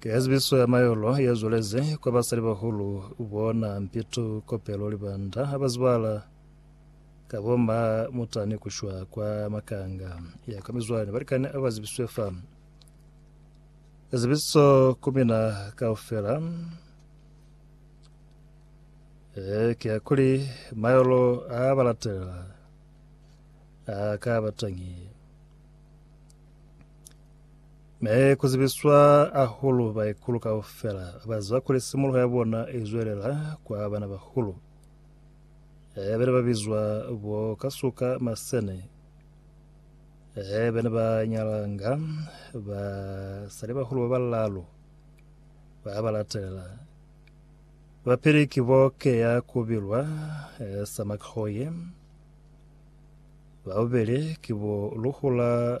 Ki hazibiso ya mayolo ye zwelezi kwa basalibahulu bona Mpitu, Kopelo, Libanda ha ba zibala ka bo ma mutani ku shwa kwa makanga ya kwa mizwani balikani ba ba zibiswe fa. Zibiso ku mina kaufela e, ki ya kuli mayolo a ba latelela a ka ba tangi. Ne ku zibiswa ahulu baikulu kaufela ba ziba kuli simuluho ya bona i zwelela kwa banabahulu. Ee, bene ba bizwa bo kasuka masene. Ee, bene ba nyalanga ba sali bahulu ba balalu ba ba latelela. Ba pili ki bo keya ku bilwa ee, sa Makhoye. Ba bubeli ki bo Luhula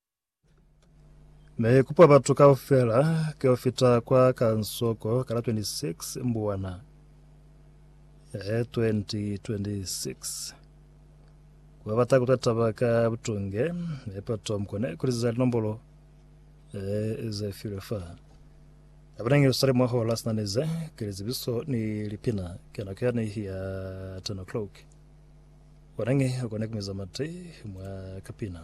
Ne i kupa batu kaufela ki yo fita kwa kansoko ka la 26 Mbuwana ee 2026. Ku ba bata ku ta taba ka butunge, ne Patton ko ne kuliziza linombolo ee ze filwe fa. Ka bana Yerusalem mwa hola sina ni ze ki lizibiso ni lipina ka nako yani ya 10 o'clock. Kona nge kone ku miza mate mwa kapina.